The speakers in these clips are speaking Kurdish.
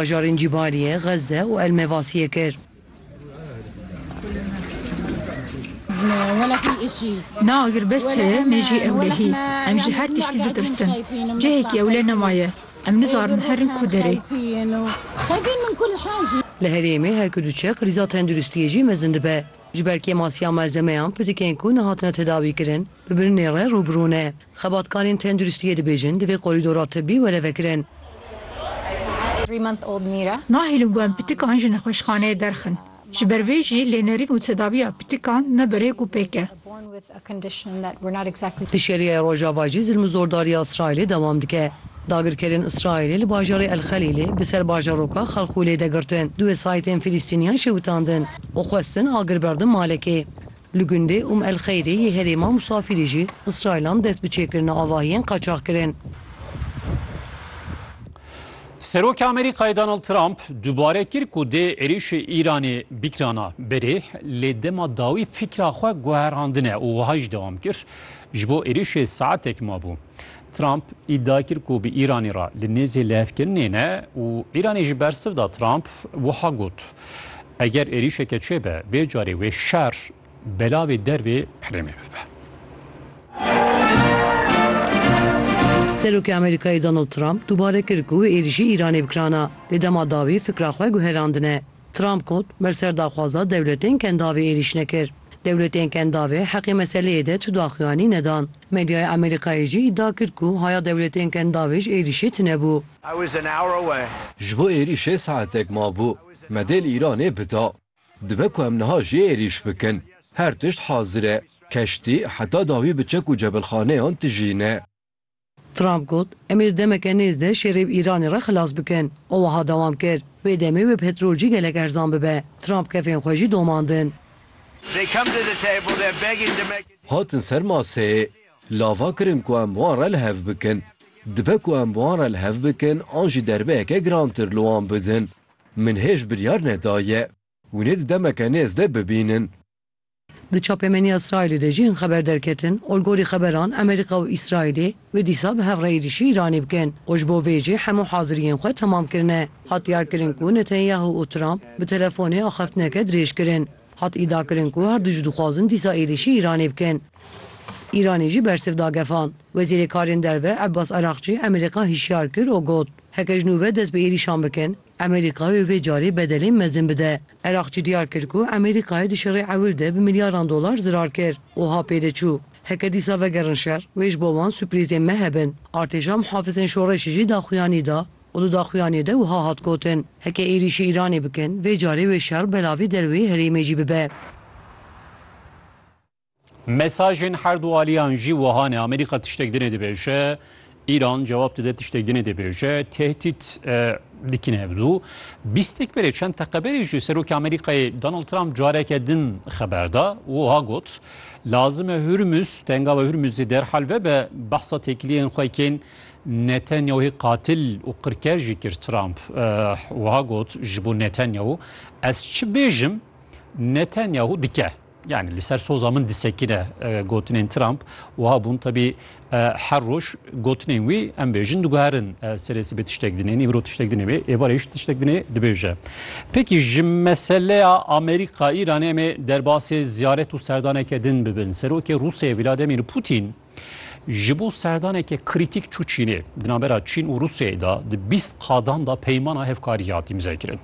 bajarên Cîbaliyê, Xezze û El-Mevasiyê kir. Na agirbest heye mêjî ewlehî. Em ji her tiştî ditirsin. Cihekî ewle nemaye. Em nizarin herin ku derê. Li herêmê her ku diçe krîza tenduristiyê jî mezin dibe. Ji ber kêmasiya malzemeyan pitikên ku nehatine tedawîkirin bi birinê re rû bi rû ne. Xebatkarên tenduristiyê dibêjin divê korîdora tibbî were vekirin. Nahêlin ku em pitikan ji nexweşxaneyê derxin. Ji ber vê jî lênerîn û tedaviya pitikan ne bi rêk û pêk e. Di Şeriyeyê Rojava jî zilm û zordariya Îsraîlê dewam dike. Dagirkerên Îsraîlê li bajarê El Xelîlê bi ser bajaroka Xelxûlê de girtin. Du wesayîtên Filistîniyan şewitandin û xwestin agir berdin malekê. Li gundê Umm El Xeyrê yê herêma Musafirî jî Îsraîlan dest bi çêkirina avahiyên qaçax kirin. Serokê Amerîkayê Donald Trump dubare kir ku dê êrîşê Îranê bikirana berê lê dema dawî fikra xwe guherandine û wiha jî dewam kir, Ji bo êrîşê saetek mabû. Trump îdia kir ku bi Îranê re li nêzê lihevkirinê ne û Îranê jî bersiv da Trump wiha got. Eger êrîşeke çê be, vê carê wê şer belavê dervê herêmê bibe. Serokê Amerîkayê Donald Trump dubare kir ku êrîşî Îranê bi kiran a, lê dema dawî fikra xwe guherandine. Trump got, Me li ser daxwaza dewletên kendavê êrîş nekir. Dewletên kendavê heqê meseleyê de tu daxuyanî nedan. Medyaya Amerîkayê jî îdia kir ku haya dewletên kendavê ji êrîşê tunebû. Ji bo êrîşê saetek mabû. Me dê li Îranê bida. Dibe ku em niha jî êrîş bikin. Her tişt hazir e. Keştî heta dawî bi çek û cebilxaneyan tijî ne. Trump got, Em ê di demeke nêz de şerê bi Îranê re xilas bikin. Û wiha dewam kir, Vê demê wê petrol jî gelek erzan bibe. Trump kefên xwe jî domandin. Hatin ser maseyê. Lava kirin ku em wan re li hev bikin. Dibe ku em wan re li hev bikin an jî derbeyeke girantir li wan bidin. Min hêj biryar nedaye hûn ê di demeke nêz de bibînin. Di çapemeniya Îsraîlê de jî hin xeber derketin olgorî xeberan Amerîka û Îsraîlê wê dîsa bi hev re êrîşî Îranê bikin û ji bo vê jî hemû haziriyên xwe temam kirine. Hat diyarkirin ku Netanyahu û Trump bi telefonê axaftineke dirêj kirin. Hat îdiakirin ku her du jî dixwazin dîsa êrîşî Îranê bikin. Îranê jî bersiv da gefan. Wezîrê Karên Derve Abbas Araghçî Amerîka hişyar kir û got, Heke ji nû ve dest bi êrîşan bikin, Amerîka wê vê carê bedelên mezin bide. Araghçî diyar kir ku Amerîkayê di şerê ewil de bi milyaran dolar zirar kir. Wiha pê de çû, Heke dîsa vegerin şer, wê ji bo wan suprîzên me hebin. Artêşa Mihafizên Şoreşê jî daxuyanî da û di daxuyaniyê de wiha hat gotin, Heke êrîşî Îranê bikin, vê carê wê şer belavî derweyî herêmê jî bibe. Mesajên her du aliyan jî wiha ne, Amerîka tiştek dinê dibêje, Îran cewab dide tiştek dinê dibêje, tehdît dikin hev du. Bîst êk berê çend teqe berê jî Serokê Amerîkayê Donald Trump careke din xeber da û wiha got, Lazim e Hurmuz, tengawa Hurmuzê derhal vebe behsa têkiliyên xwe kên Netanyahû qatil û qirker jî kir Trump wiha got ji bo Netanyahû, Ez çi bêjim Netanyahû dike. Yani li ser soza min disekine gotinên Trump wiha bûn tebî her roj gotinên wî em bêjin diguherin serê sibê tiştek dinê îmro tiştek dinê wê êvarê ji tiştek dinê dibêje. Pekî ji meseleya Amerîka Îranê em ê derbasê ziyaret û serdaneke din bibin. Serokê Rûsyayê Vladimir Putin Ji bo serdaneke krîtîk çû Çînê. Di navbera Çîn û Rûsyayê de di bîst qadan de peymana hevkariyê hat îmzekirin.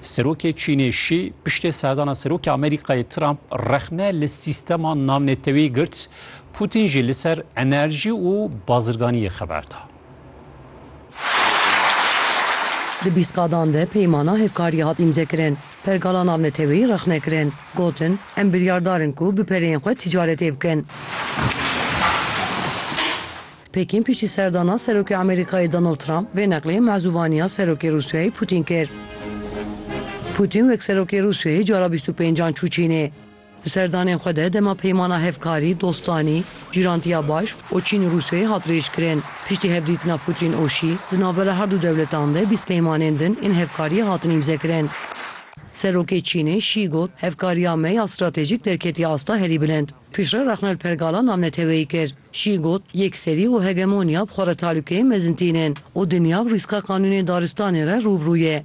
Serokê Çînê Şî piştê serdana Serokê Amerîkayê Trump rexne li sîstema navnetewî girt, Putin jî li ser enerjî û bazirganiyê xeber da. Di bîst qadan de peymana hevkariyê hat îmzekirin. Pergala navneteweyî rexne kirin. Gotin, Em biryardar in ku bi pereyên xwe tîcaretê bikin. Pekîn piştî serdana Serokê Amerîkayê Donald Trump vê neqlê mezûvaniya Serokê Rûsyayê Pûtîn kir. Pûtîn wek Serokê Rûsyayê cara bîst û pêncan çû Çînê. Di serdanên xwe de dema peymana hevkarî, dostanî, cîrantiya baş û Çîn û Rûsyayê hat rêjkirin. Piştî hevdîtina Putin û Şî, di navbera her du dewletan de bîst peymanên din ên hevkariyê hatin îmzekirin. Serokê Çînê Şî got, Hevkariya me ya stratejîk derketiye asta herî bilind. Piştre rexne li pergala navneteweyî kir. Şî got, Yekserî û hegemoniya bi xwe re talûkeyên mezin tînin û dinya bi rîska qanûnên daristanê re rû bi rû ye.